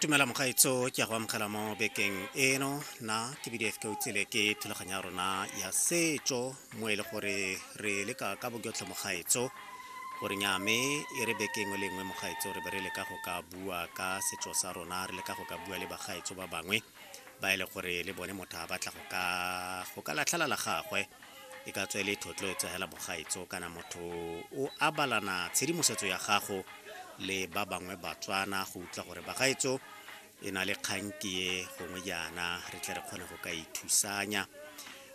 tumela mogaetso ke ya go amogela mo bekeng eno na ke bdf ke utsile ke thulaganyo ya rona ya setso mo e le gore re leka ka bojotlhe mogaetso gore nyame e re bekeng o lengwe mogaetso re be re leka go ka bua ka setso sa rona re leka go ka bua le bagaetso ba bangwe ba e le gore le bone motho a batla go ka go ka latlhela la gagwe e ka tswa e le thotlo e tsogela bogaetso kana motho o abalana tshedimosetso ya gago le ba bangwe batswana go utlwa gore bagaetso e na le kganki e gongwe jaana re tle re kgone go ka ithusanya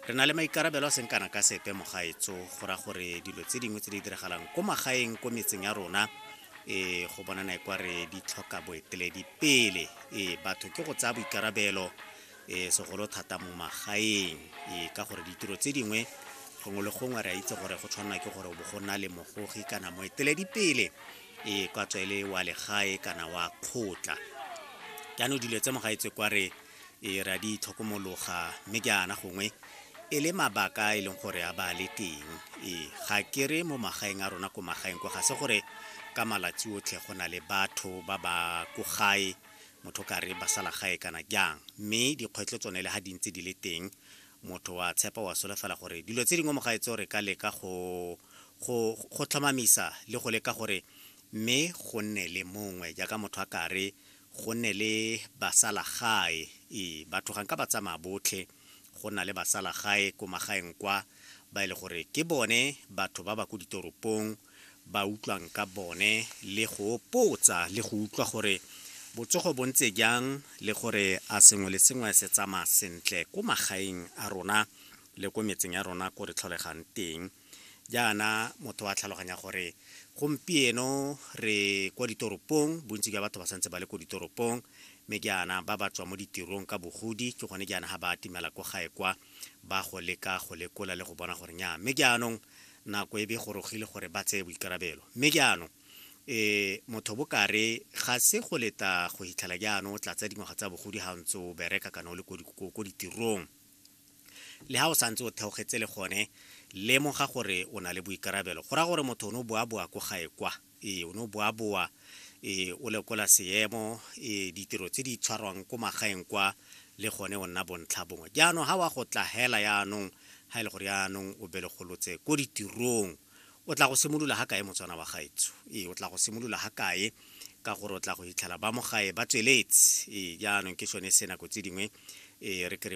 re na le maikarabelo a seng kana ka sepe mogaetso go ra gore dilo tse dingwe tse di diragalang ko magaeng ko metseng ya rona ee go bonana e kwa re di tlhoka boeteledi pele ee batho ke go tsaya boikarabelo ee segolo thata mo magaeng ee ka gore ditiro tse dingwe gongwe le gongwe re a itse gore go tshwanela ke gore bo go na le mogogi kana moeteledi pele ee kwa tswele wa legae kana wa kgotla jaanong dilo tse mogaetse kwa re Ee, re a di itlhokomologa, mme jaana gongwe e le mabaka a e leng gore a ba le teng. Ee, ga ke re mo magaeng a rona ko magaeng kwa ga se gore ka malatsi otlhe go na le batho ba ba ko gae motho ka re ba sala gae kana jang mme dikgwetlho tsone le ga di ntse di le teng motho wa tshepa wa solofela gore dilo tse dingwe mo gae tseo re ka leka go go go tlhomamisa le go leka gore mme go nne le mongwe jaaka motho a kare go ne le basalagae e batho ga nka ba tsamaya botlhe go na le basalagae ko magaeng kwa ba e le gore ke bone batho ba ba ko ditoropong ba utlwang ka bone le go potsa le go utlwa gore botsogo bo ntse jang le gore a sengwe le sengwe se tsamaya sentle ko magaeng a rona le ko metseng ya rona ko re tlholegang teng jaana motho wa tlhaloganya gore gompieno re kwa ditoropong bontsi jwa batho ba santse ba le ko ditoropong mme jaana ba ba tswa mo ditirong ka bogodi ke gone jaana ga ba atimela ko gae kwa ba go leka go lekola le go bona gore nya mme jaanong nako e be gorogile gore ba tseye boikarabelo mme jaanong um motho bokare ga se go leta go hitlhela jaanong o tlatsa dingwaga tsa bogodi ga ntse o bereka kana o le ko ditirong Le ha o santse o theogetse le gone, lemoga gore o na le boikarabelo. Go raya gore motho o ne o boaboa ko gae kwa. Ee, o ne o boaboa, ee, o lekola seemo, ee, ditiro tse di tshwarwang ko magaeng kwa, le gone o nna bontlha bongwe. Jaanong, ha wa go tla hela yaanong, ha e le gore yaanong o belegolotse ko ditirong, o tla go simolola ha kae motswana wa gaetsho? Ee, o tla go simolola ha kae? Ka gore o tla go hitlhela ba mo gae ba tsweletse. Ee, jaanong ke sone se nako tse dingwe, ee, re ke re